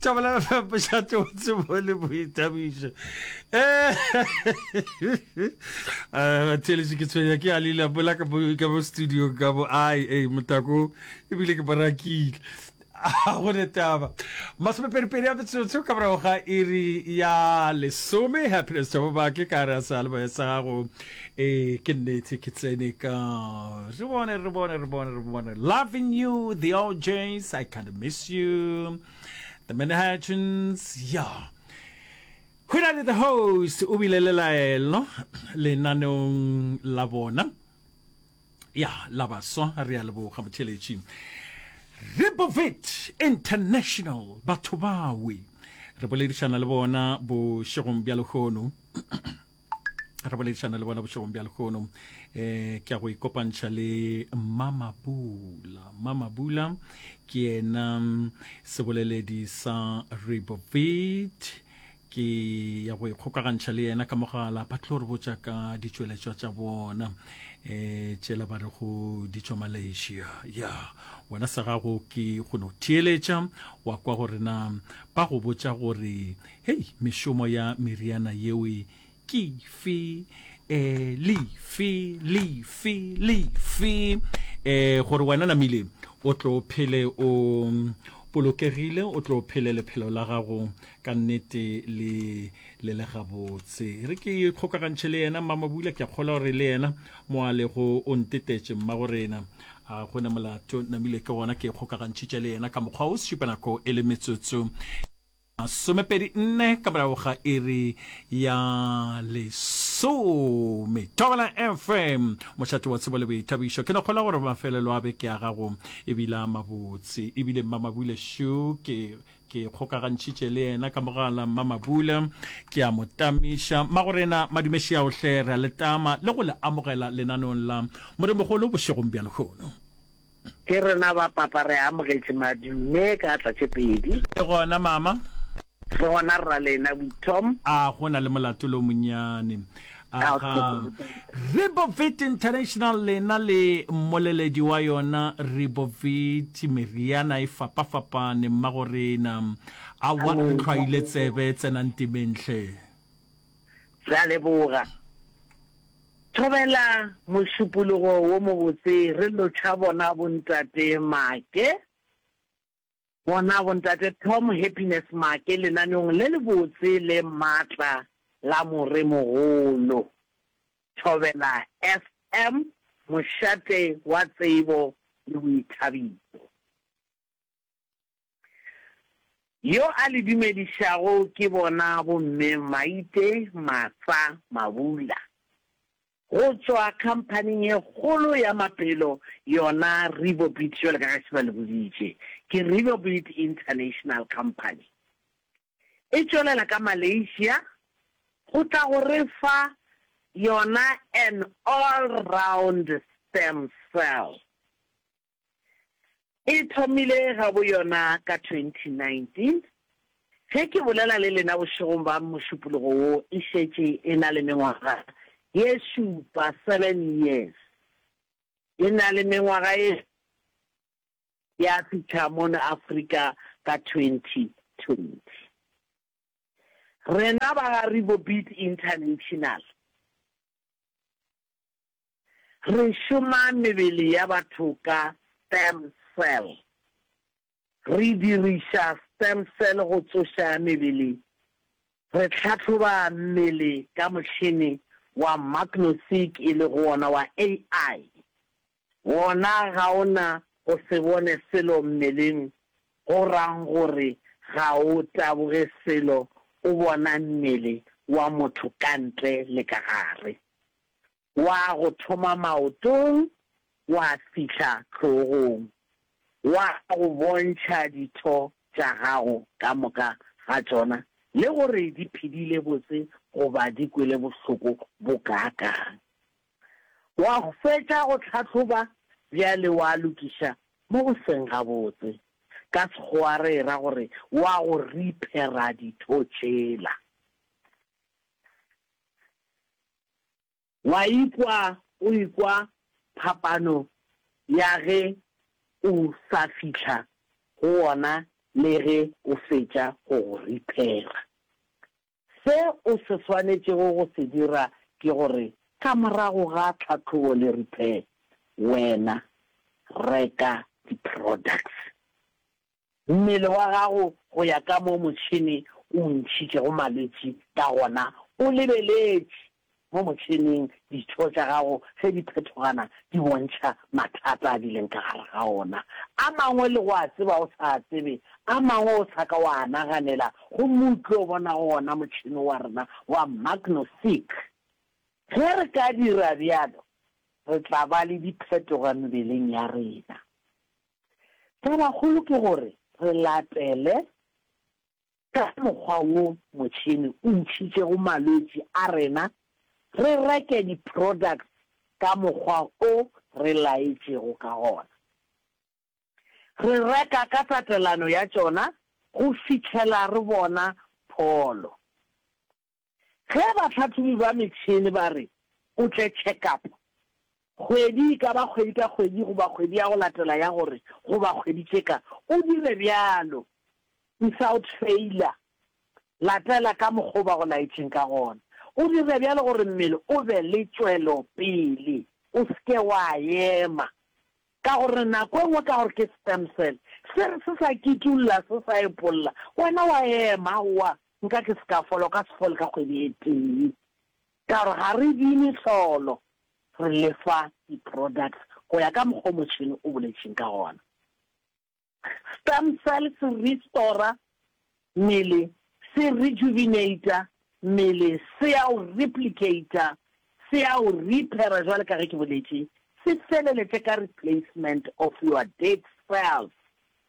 tšabela pšhatse o tsebo le boithabišo theletše ke tshwenya ke alile bola ka bo studio ka bo ai motako ebile ke barakile A go ne taba. Masomeperiperi a metsotso ka morago ga iri ya lesome happiness jabobake ka re a sa leboya sa gago e ke nnete ke tsene ka re bone re bone re bone re bone loving you the ojs i can't miss you the manhattans ya go na le the host o bile le laelo lenaneong la bona ya la baswa re a leboga botheletši rebovit international batho bawe re boledišana le bona bošegong bja lehono re boledišana le bona bošegong bja lehono um eh, ke ya go ikopantšha le mamabula mamabula ke yena mm, seboleledi sa rebovit Ke ya go ikgokagantšha le yena ka mogala, ba tlo re botša ka ditšweletšwa tša bona um tšela ba re go di tšwa malaysia ya wena sa gago ke go no theeletša wa kwa gore na ba go botša gore hei mešomo ya meriana yeo Ke fe? Eh, le fe? Le fe? Le fe? Eh, gore wena namile o tlo phele o polokegile, o tlo phele lephelo la gago ka nnete le le le gabotse. E re ke kgokagantšhe le yena mmamabula, ke a kgolwa gore le yena mo a lego o ntetetše mmagorena. A go na molato, namile ke gona ke kgokagantšhitše le yena ka mokgwa o sešupanako e le metsotso Masomepedi nne ka morago ga iri ya lesome. Thobela FM, mošate wa tsebo le boithabišo. Ke lekgolo gore mafelelo a beke ya gago e bile a mabotse. E bile mmamabule shu ke ke kgokagantšhitše le yena ka mogala mmamabule ke a mo tamiša magorena madumeši ya ohle re a letama le go le amogela lenanong la modimogolo bošegong bja lehono Ke rena ba papa re amogetše madume ka atla tše pedi. Ke gona mama. Ke gona rra lena Withom. A go na le molatolo o monnyane? Aga Ribovit International lena le mmoleledi wa yona Ribovit meriana e fapafapane mmagorena. Aowa re tlhwaile tsebe tsenang timeng hle. Re a leboga. Thobela mošupologo wo mobotse re lotšha bona bontate Maake, bona bontate Tom Happiness Maake lenaneong le lebotse le matla la Moremogolo. Thobela FM, mošate wa tsebo le boithabišo. Yo a le dumedišago ke bona bomme Maite Matsa Mabula go tšwa khamphaning e kgolo ya mapelo yona Ribobit jwale ka ge se ba le boditše ke Ribobit International Company e tšwelela ka Malaysia go tla go re fa yona an all round stem cell E thomile gaboyona ka 2019. Ge ke bolela le lena bošegong ba Mošupologo wo, e šetše e na le mengwaga ye šupa, seven years. E na le mengwaga ye ya fihla mono Afrika ka 2020. Rena ba ga Ribobit International, Re šoma mebele ya batho ka stem cell. Re diriša stem cell go tsoša mebele. Re tlhahloba mmele ka motšhene wa magno-seq e lego wona wa AI. Wona ga o na go se bone selo mmeleng go rang gore ga o taboge selo, o bona mmele wa motho ka ntle le ka gare. wa go thoma maotong wa fihla hlogong, wa go bontšha ditho tša gago ka moka ga tšona le gore di phedile botse goba di kwele bohloko bokaakang. Wa fetša go hlahloba bjale wa lokiša mo go seng gabotse, ka Sekgowa re e ra gore wa go riphera ditho tšela. Wa ikwa o ikwa phapano ya ge o sa fihla go wona le ge o fetša go go riphela? Se o se swanetšego go se dira ke gore ka morago ga tlhahlobo le repair, wena reka di-products mmele wa gago go ya ka mo motšhene o o ntšhitšego malwetši ka gona, o lebeletše mo motšheneng ditho tša gago ge di phethogana di bontšha mathata a di leng ka gare ga ona. A mangwe le go a tseba o sa a tsebe, a mangwe o sa ka wa a naganela, gomme o tlo bona go ona motšhene wa rena wa magno-seek. Ge re ka dira bjalo, re tla ba le diphetogo mebeleng ya rena. Tabakgolo ke gore re latele ka mokgwa wo motšhene o ntšhitšego malwetši a rena, re reke di-products ka mokgwa o re laetšego ka gona. Re reka ka tatelano ya tšona go fihlela re bona pholo. Ge bahlahlobi ba metšhene ba re o tle tšhekapo kgwedi e ka ba kgwedi ka kgwedi goba kgwedi ya go latela ya gore goba kgwedi tše ka, o dire bjalo without failure. Latela ka mokgwa o ba go laetšeng ka gona. O dire bjalo gore mmele o be le tšwelopele, o se ke wa ema. Ka gore nako e nngwe ka gore ke sperm cell se re se sa kitulla se sa epolla, wena wa ema, aowa, nka ke se ka fola, o ka se fole ka kgwedi e tee. Ka gore ga re di mehlolo, re le fa di-products go ya ka mokgwa o motšhene o boletšeng ka gona. Stem cell se restora mmele, se rejuvenata mmele, se ya o replicata, se ya o repaira jwale ka ge ke boletše, se feleletše ka replacement of your dead cells,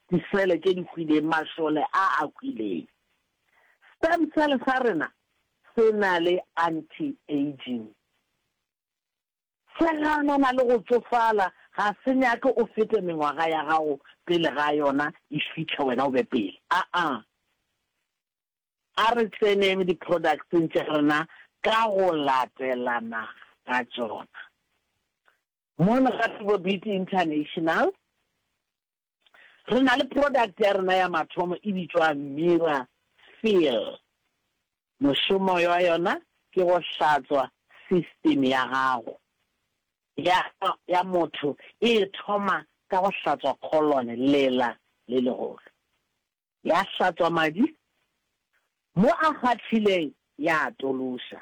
disele tše di hwileng, mašole a a hwileng. Stem cell sa rena se na le anti-aging. Seganana le go tsofala ga se nyake o fete mengwaga ya gago pele ga yona e fitlha wena o be pele. Aa. A re tseneng di-products-eng tša rena ka go latelana ga tšona. Mono ga Thabo Beauty International, Re na le product ya rena ya mathomo e bitšwa Mira Feel. Mošomo wa yona ke go hlatswa system ya gago. Ya ya motho e thoma ka go hlatswa colon, lela le legolo. Ya hlatswa madi mo a kgathileng ya a tološa.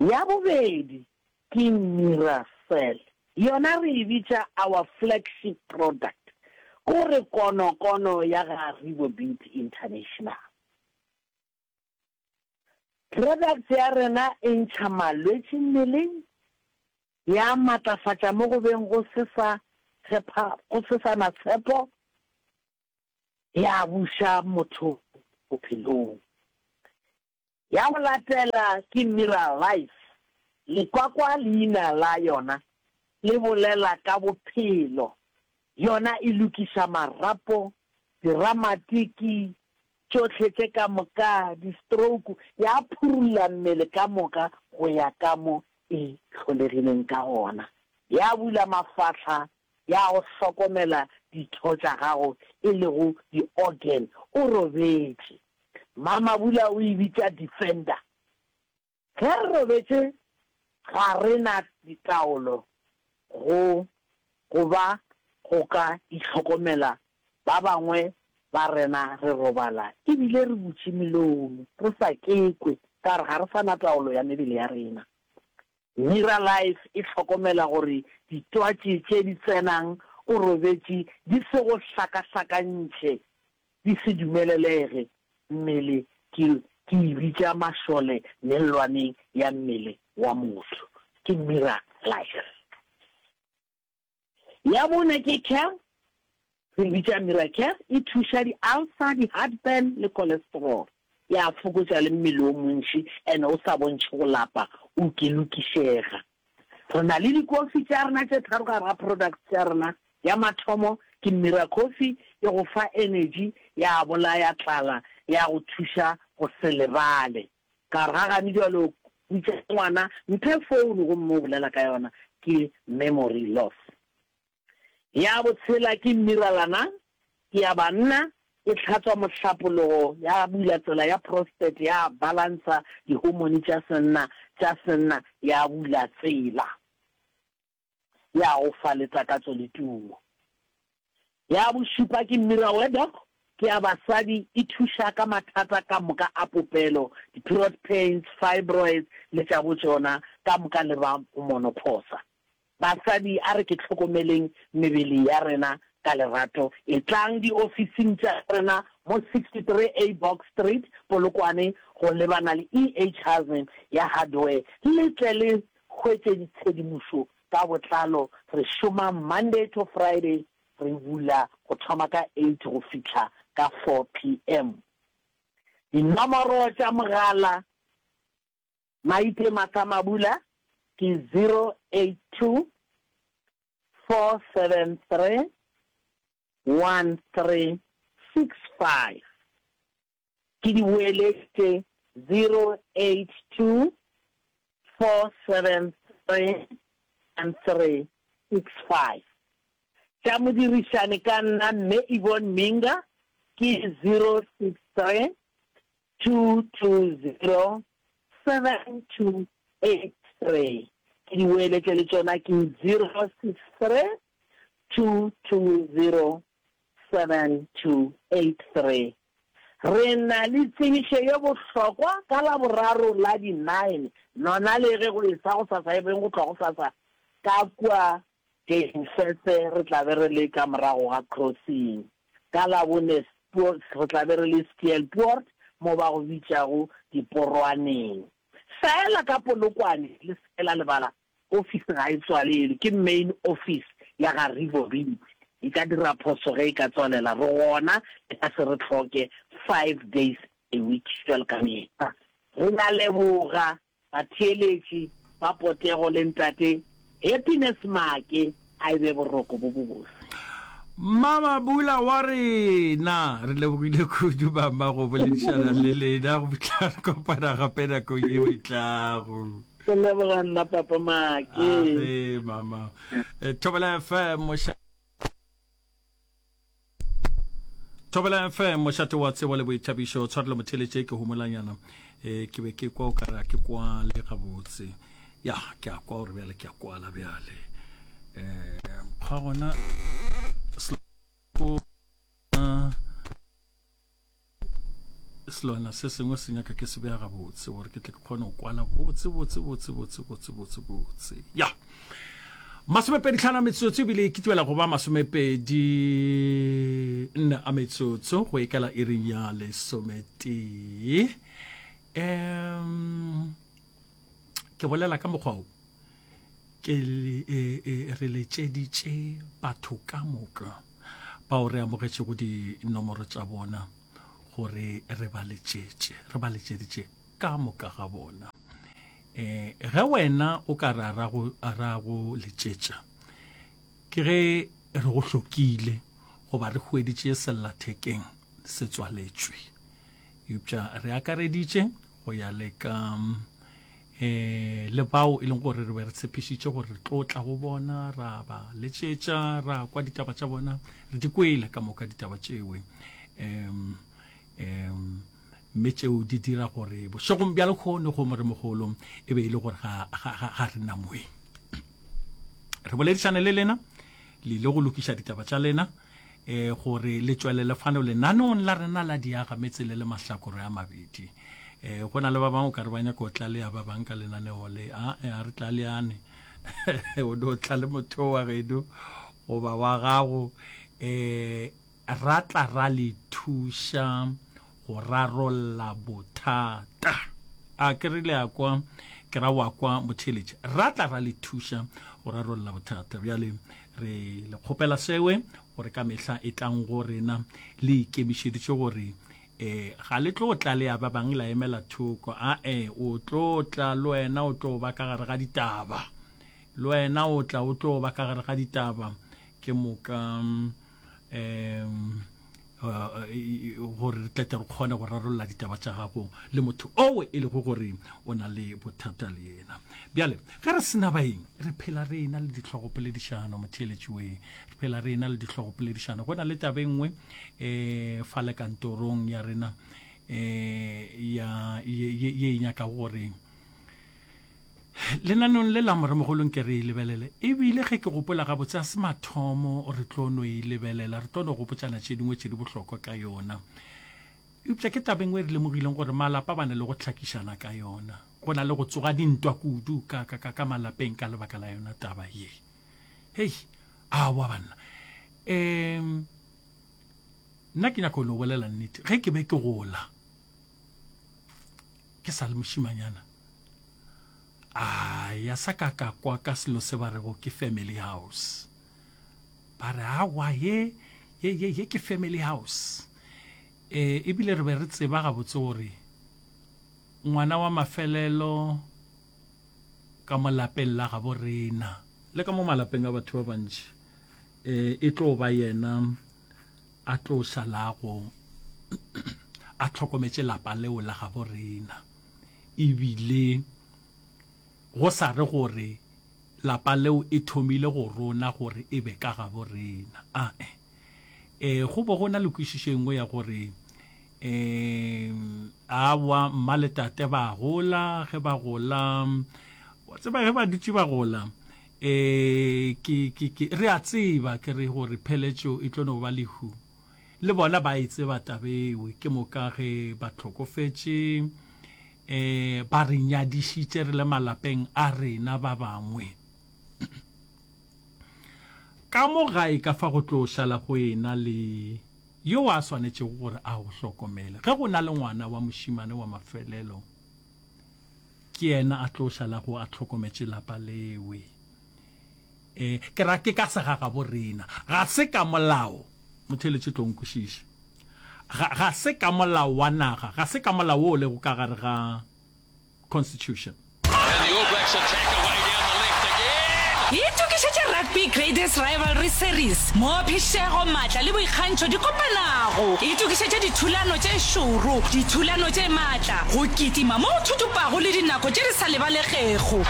Ya bobedi ke Miracell, yona re e bitša our flagship product, ko re konokono ya ga Rebo Beauty International. Products ya rena e ntšha malwetši mmeleng, ya matlafatša mo go beng go se sa tshepa, go se sa na tshepo, ya buša motho bophelong. Ya go latela ke Miral Life, lekwa kwa leina la yona le bolela ka bophelo. Yona e lokiša marapo, diramatiki, tšohle tše ka moka, di-stroke, ya phurulla mmele ka moka go ya ka mo e hlolegileng ka gona. Ya bula mafahla ya go hlokomela ditho tša gago e lego di-organ o robetše. Mamabula o e bitša defender. Ge re robetše ga re na ditaolo go go ba go ka itlhokomela ba bangwe ba rena re robala e bile re butše melomo re sa kekwe ka re ga re sa na taolo ya mebele ya rena. Miralife e hlokomela gore ditwatši tše di tsenang o robetše di se go hlakahlakantšhe di se dumelelege mmele ke ke e bitša mašole mellwaneng ya mmele wa motho. Ke Miralife. Ya bone ke care, re bitša Miracare, e thuša di-ulcer, di-heartburn le cholesterol. E a fokotša le mmele o montši and o sa bontšhe go lapa, o kelokišega. Re na le dikofi tša rena tše tharo gare ga products tša rena. Ya mathomo ke Miracoffee, e go fa energy, ya bolaya tlala, ya go thuša go se lebale. Ka re, Gagane bjalo putša ngwana, mphe founo gomme o bolela ka yona, ke memory loss. Ya bo tshela ke mmiralana, ke ya banna, e tlhatswa mohlapologo, ya bula tsela ya prostate, ya balansa dihomone tša senna, tša senna, ya bula tsela. ya go fa le takatso le tumo. Ya bošupa ke Mira Wedok, ke ya basadi, e thuša ka mathata ka moka a popelo, di-period pains, fibroids le tša botšona ka moka le ba monophosa. Basadi a re ke hlokomeleng mebele ya rena ka lerato, etlang diofising tša rena mo 63A Box Street, Polokwane go lebana le EHazm ya Hardware le tle le Hwetšeng tshedimošo ka botlalo, re šoma Monday to Friday, re bula go thoma ka eight go fihla ka four PM. Dinomoro tša mogala, Maite Martha Mabula ke zero eight two, four seven three, one three six five. ke di boeletše 0824731365. Tša modirišani ka nna Mme Yvonne Minga ke 0632207283. Ke di boeletše le tšona ke 0632207283. 7-83, Re na le tsebišo ye bohlokwa ka Laboraro la di Nine, lona le ge go e-sa go sasa e beng go tloga go sasa ka kua Geinfesse re tla be re le ka morago ga Crossing, ka Labone re tla be re le Steelpoort mo ba go bitšago Diporoaneng. Feela ka Polokwane le se ke la lebala Ofisi ga e tswalelwe, ke main office ya ga Rivorim. E ka dira phoso ge e ka tswalela, re gona e ka se re hloke five days a week bjalo ka mehla. Re na leboga batheeletši ba potego le Ntate Happiness Make A e be boroko bo bobose. Mmama Bula wa rena. Re lebogile kudu mama go boledišana le lena go tla kopana gape nako yeo e tlago. Ke leboga nna papa Maake. A re mama. Thobela FM. Thobela FM mošate wa tsebo le boithabišo tshwarelo motheletše ke humolanyana e eh, ke be ke kwa o ka ra ke kwa le gabotse ya ke a kwa gore bjale ke a kwala bjale um ga gona selwana se sengwe se nyaka ke se bega gabotse gore ke tle ke kgone go kwana botse botse botse botse botse botse botse ya masomepedi tlhano a metsotso ebile e kitwela go ba masomepedi nne a metsotso go ekela iring ya lesometee um ke bolela ka mokgwa o ke e, e, re letšeditše batho ka moka bao re amogetšego dinomoro tša bona gore re ba letšetše re ba letšeditše ka moka ga bona um ge wena o ka re ra go letšetša ke ge re go hlokile goba re hweditše sellathekeng se tswaletšwe eupša re akareditše go ya le ka eh le bao e leng gore re be re tshepišitše gore re tlo tla go bona ra ba letšetša ra kwa ditaba tša bona re di kwele ka moka ditaba tšewe um um mme tšeo di dira gore bošegong bja lekgono go moremogolo e be e le gore ga re na moeng re boledišane le lena le ile go lokiša ditaba tša lena e gore le tšwelele fano lenaneong la rena la diaga metse le le mahlakore a mabedi e go na le ba bangwe o ka re ba nyaka go tlalea ba bang ka lenaneo le a e, a re tlaleane o ne o tla le motho wa gedu goba wa gago um ra tla ra le thuša go rarolla bothata. A ke re le a kwa, ke ra wa kwa motheletši, ra tla ra le thuša go rarolla bothata. Bjale re le kgopela sewe gore ka mehla e tlang go rena le ikemišeditše gore eh ga le tlo tla le ya ba bang la emela thoko a e o tlo tla le wena o tlo ba ka gare ga ditaba le wena o tla o tlo ba ka gare ga ditaba ke moka um gore re tlete re kgone go rarolola ditaba tša gago le motho owe e lego gore o na le bothata le yena bjale ge re sena baeng re phela re ena le ditlhogopoledišano motheeletšiwe re phela re ena le ditlhogopoledišano go na le tabe nngwe um fa le kantorong ya rena um ye e nyaka gore Lenaneong le la Moremogolo nke re e lebelele, e bile ge ke gopola gabotse ga se mathomo re tlo no e lebelela, re tlo no gopotšana tše dingwe tše di bohlokwa ka yona. Eupša ke taba e nngwe e re lemogileng gore malapa ba na le go hlakišana ka yona. Go na le go tsoga dintwa kudu ka, ka, ka, ka malapeng ka lebaka la yona taba ye. Hei, aowa banna. Um, nna ke nyaka go no bolela nnete. Ge ke be ke gola, Ke sa le mošimanyana, a ya sa ka ka kwa ka selo se ba rego ke family house. Ba re, Aowa, ye, ye, ye, ye ke family house. E, ebile re be re tseba gabotse gore ngwana wa mafelelo ka mo lapeng la gabo rena, le ka mo malapeng a batho ba bantši, e, e tlo ba yena. a tlo šalago a tlhokometše lapa leo la gabo rena ebile go sa re gore lapa leo e thomile go rona gore e be ka gabo rena a e e go bo go na le kwešišo engwe ya gore um a wa mma le tate ba gola ge ba gola wa tseba ge ba dutše ba gola E, ke, ke, ke, re a tseba, ke re, gore pheletšo e tlo no ba lehu. Le bona ba e tseba taba eo, ke moka ge ba hlokofetše, e, ba re nyadišitše re le malapeng a rena ba bangwe. Ka mo gae ka fa go tlo šala go ena le yo a swanetšego gore a go hlokomele. Ge go na le ngwana wa mošemane wa mafelelo, ke yena a tlo šalago a tlhokometše lapa lewe e ke ra ke ka sega ga borena ga se ka molao motheletše tlo nkwešiša ga, ga se ka molao wa naga ga se ka molao wo o lego ka gare ga constitution itokišetše rugby greatest rivalry series mo phišego maatla le boikgantšho di kopanago itokišetše dithulano tše šoro dithulano tše maatla Mosela, go kitima mo go thutupago le dinako tše di sa lebalegego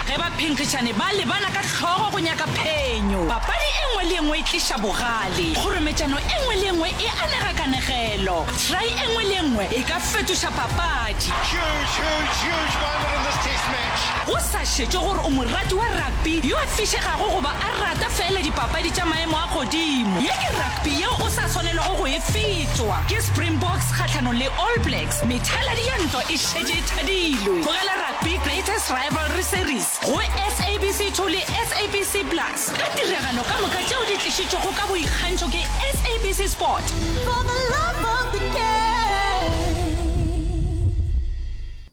ge baphenkgišani ba lebana ka hlogo go nyaka phenyo. Papadi e nngwe le e nngwe e tliša bogale, kgorometšano e nngwe le e nngwe e anega kanegelo, try e nngwe le e nngwe e ka fetoša papadi. Go sa šetšwe gore o morati wa rugby yo a fišegago goba a rata feela dipapadi tša maemo a godimo, ye ke rugby. Pi yeo o sa swanelwago go e fetšwa ke Springboks kgahlanong le All Blacks, methaladi ya ntwa e šetše e thadilwe. Tlogela Rugby Greatest Rivalry Series go SABC 2 le SABC Plus ka tiragalo ka moka tšeo di tlišitšwego ka boikgantšho ke SABC Sport. For the love of the game.